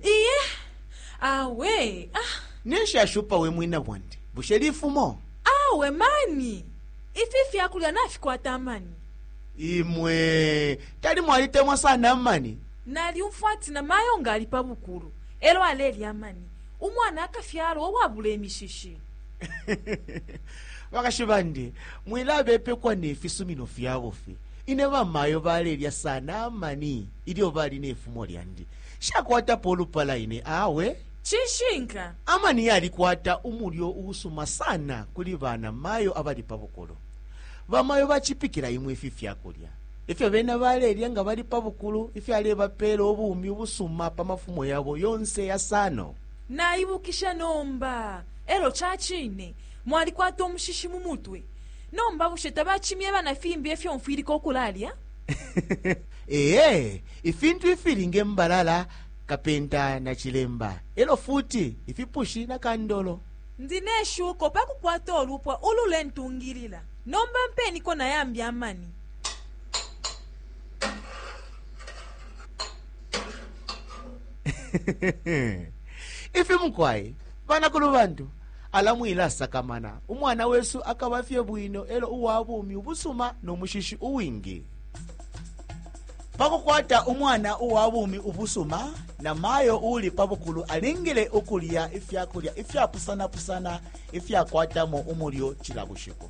iye awe ah, ninshi ashupa we mwina bwandi bushe lifumo awe mani ifi fyakulya nafikwata amani imwe tali mwalitemwa sana amani nalyumfwa ati na mayo nga ali pa bukulu elo alelya amani umwana akafyalwa uwabula imishishi bakashi bandi mwilabepekwa nefisumino fyabufi Ine bamayo balelya sana amani ilyo bali ne fumo lyandi. Nshakwatapo ulupala ine awe. Cishinka, amani yalikwata umulyo uusuma sana kuli bana mayo abali pa bukulu. Bamayo bacipikila imwe ifi fyakulya ifyo bena balelya nga bali pa bukulu ifyalebapeela ubumi ubusuma pa mafumo yabo yonse yasano. Naibukisha nomba. Elo cacine mwalikwata umushishi mu mutwe. Nomba bushe tabacimyeba na fimbi ifyo mfwilika ukulalya? Ee, ifintu ifili nge mbalala, kapenta na cilemba, e lyo futi ifipushi na kandolo. Ndi ne shuko pa kukwata ulupwa ululentungilila. Nomba mpeniko na yambi amani. Ifi mukwai, banakulubantu. Ala mwilasakamana, umwana wesu akaba fye bwino e lyo uwa bumi ubusuma no mushishi uwingi. Pa kukwata umwana uwa bumi ubusuma, namayo uuli pa bukulu alingile ukulya ifya kulya ifyapusanapusana ifyakwatamo umulyo cila bushiku.